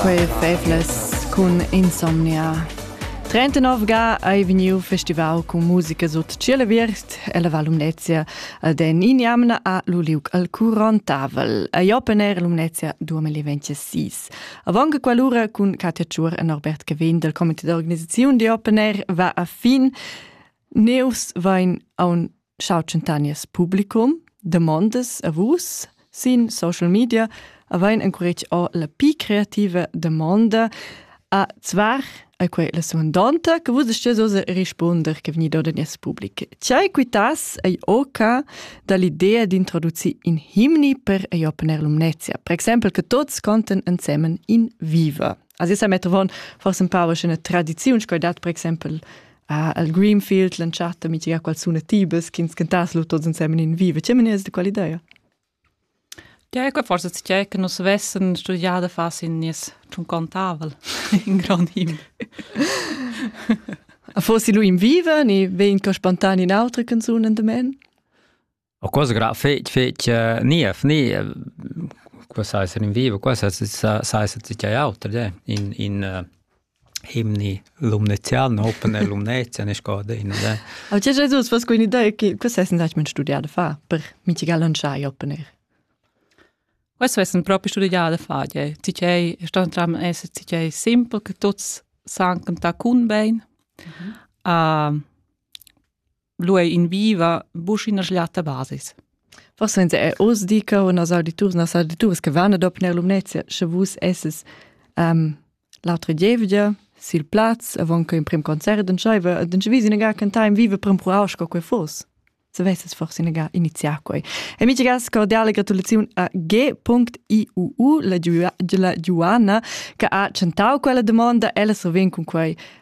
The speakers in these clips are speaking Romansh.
Quei fevlas cun insomnia. 39 ga ei vegniu festivau cun musica sut tschiel aviert e la Val Lumnezia ad en injamna a lu liug al curontavel. Ei open air Lumnezia 2026. Avon che quell'ura cun Katja Tschuor e Norbert Cavin del comité d'organisaziun di open air va a fin. Neus vain aun Ciao Centanias publicum, demondas a vus sin social media avain encourage o la pi creativa demonda a zvar a quei la suandonta che vus stess osa rispunder che vegni da nies public. Tgei quitas ei oca dall'idea d'introducir in himni per ei opener lumnezia, per exempel che tots conten ensemen in viva. Also sa mettovon forse un pau una tradiziun sco dat per exempel uh, al Greenfield l'entschatta mitica qual suna tibes ch'ins cantas lu tots insemen in vive. Che menias de qual idea? Ja, ecco forse c'è che nos vessen studiate fas in nies tun contavel in grand him. Fossi lui in vive, ni vegn co spontan in autre canzun in de men? O quas gra fetg fetg niev niev qua sai ser in vivo qua sai sai ser tgei auter de in in himni lumnezian open e lumnezia ne scode in de A tge Jesus was quindi da che questa è seit mein studiare fa per mitigar lanciai open air Questo è proprio studiato fa, tgei sta tram essere tgei simpel che tuts san cantare con ben. Uh, lu ei in viva buc ina schliata basis. Forse in è oz di che unas auditurs nas auditurs che vanno dopo nella Lumnezia, sche vus esses um, l'altra gievgia sil plaz avon che in prim concert dann scheive dann wie sie ga can time vive prim proaus co quei fos se vesses forse nega iniziar quei amici gas cordiale gratulazione a g.iuu la la Giuana che ha centau quella domanda ella so ven con quei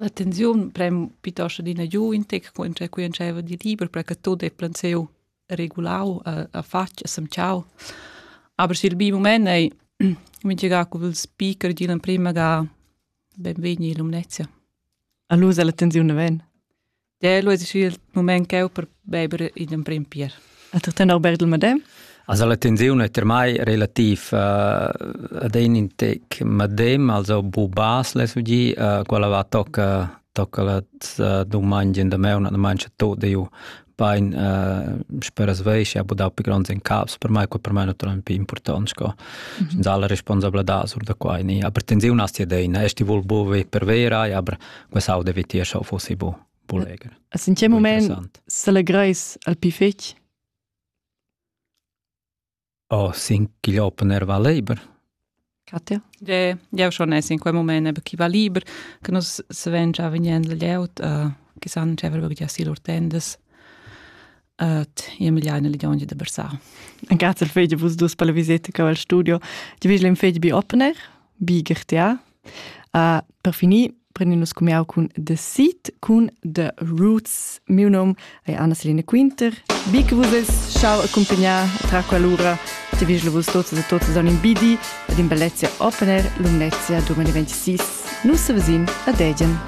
L'attenziun prem piuttosto adina giu in tec co intschè cu entscheiva di liber, perche tut ei plansiu regulau, a fatg, a semtschau. Aber sil bi mument ei mintga cu il speaker digl emprema ga benvegni in Lumnezia. E lu sa la tensiun naven. Del es il moment ch'eu per beiber in emprim pier. A tu ten Albert il Madem? Also la tensione è per me relativ uh, ad in intec madem, also bu bas le sugi, uh, quella va tocca tocca la uh, domanda da me una domanda tot de ju pain uh, speras veis ja budau pi gronds in caps per mai quel per mai naturalmente pi important sco mm -hmm. dalla responsabilità sur da quai ni aber tensione asti deina esti vul buvi per vera ja aber Quest audio vitier schau fossi bo, bo leger. A sincer moment s'allegreis al pi fetg? Oh, sin chi opener va liber. Katja? Je, jau schon es in quel moment eben chi va liber, che nus se ven già vegnend legiaut, uh, che san già verbe già si lur tendes. Ed io me gliaina ligiaungi da versar. En grazia al fegi vus dus per la viseta che al studio. Ti vegli in fegi bi opener, bi gertia. Uh, per finir, prendin nus cumiau cun The Seat cun The Roots. Miu nom è Anna-Selina Quinter. Bi che vus es schau accompagnar tra quell'ura. Ti vegli vus tuts e tuts an in bidi ed in bellezia opener Lumnezia 2026. Nus se vesin a Degen.